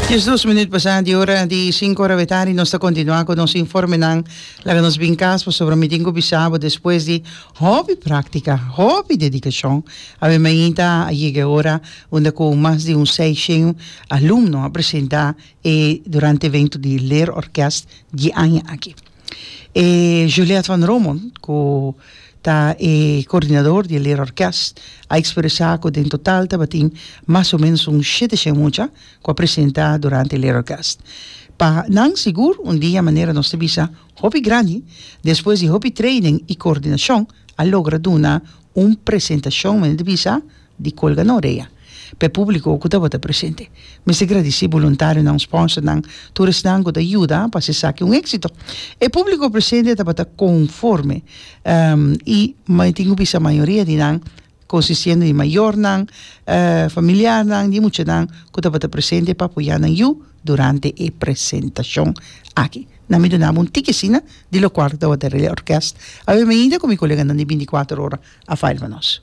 Dies dos minuut pasá di ora di sinku ora we tardi nos ta kontinuá ku nos informenan. Laga nos bin kas pasobra mi tin ku bisa bo despues di hopi práktika, hopi dedikashon a wen mainta a yega e ora unda ku mas di un seishen alumno a presentá e durante evento di Leerorkest di aña aki. E Juliette van Romon, cu ta e coordinador di e Lira Orkest, a expresa cu den total tabatin mas o menos un shete shen mucha cu a presenta durante e Lira Orkest. Pa nan sigur un dia manera nos ta bisa hopi grandi, despues di hopi training y coordinacion a logra duna un presentacion manera di bisa, di colga na orea p'e publico cu tabata presente. Mester gradici buluntarionan, sponsornan, tur esnan cu ta yuda pa haci esaki un exito. E publico presente tabata conforme y mi tin cu bisa mayoria di nan consistiendo di mayornan, familiarnan di muchanan cu tabata presente pa apoya nan yu durante e presentacion aki. Nan mi dunaba un tiki asina di locual cu tabata Relé Orkest. Awe mi ainda cu mi coleganan di binticuater ora available nos.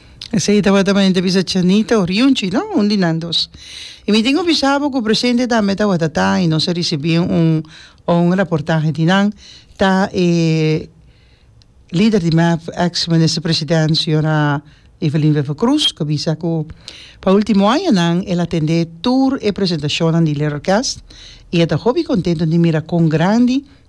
Esei tabata mane ta bisa Chanita o Riunchi, no? Un di nan dos. I mi tin ku bisa bo ku presente tambe ta Watatá i nos a risibí un un raportahe di nan. Ta e lider di mep, eks minister president señora Evelyn Wever Croes, ku a bisa ku pa ultimo añanan el a tendé tur e presentashonnan di Little Orkest i e ta hopi kontentu di mira kon grandi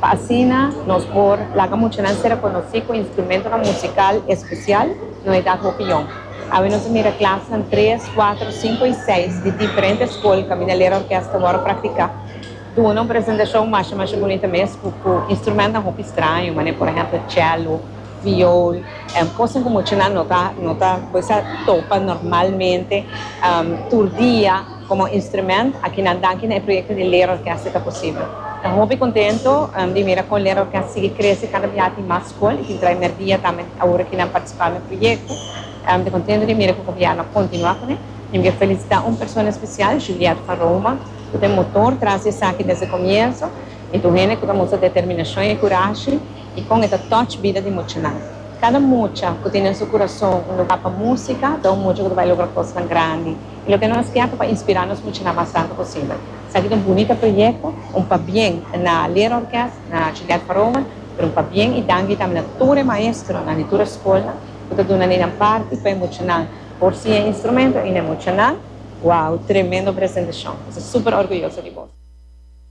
Pa asina nos por laga muchanan ser rekonosí ku instrumentonan musikal espesial, no e dad hopi yòn. Awe nos a mira klasnan tres, kuater, sinku i seis di diferente skol kaminda lera orkes ta wòrdu praktiká duna un presentashon masha masha bunita mes ku ku instrumentnan hopi straño manera por ehèmpel chèlo, viol, èn kosnan ku muchanan no ta no ta por esa topa normalmente tur dia. Komo instrumènt, akinan danki na e proyekto di Leerorkest e ta posibel. Ta hopi kontento di mira kon Leerorkest sigui krese kada bia tin mas skol i tin trai mer dia tambe awor aki nan partisipá na e proyekto. Ta kontento di mira ku gobièrnu a kontinuá ku ne. Mi ke felisitá un persona spesial, Juliette van Roma, ku ta e motor tras di esaki desde komienso i tur hende ku ta mustra determinashon i kurashi i kon e ta touch bida di muchanan. Kada mucha ku tin den su kurason un lugá pa músika ta un mucha ku ta bai logra kosnan grandi. I lo ke nos tempu pa inspirá nos mucha nan mas tantu posibel. Esaki ta un bunita proyekto, un pabien na leerorkes, na Juliette Faroma, pero un pabien i danki tambe na tur e maestronan di tur e skolnan ku ta duna neinan parti pa e mucha nan por siña e instrumento i na e mucha nan, wow, tremendo presentashon! Mi ta super orguyoso di bos.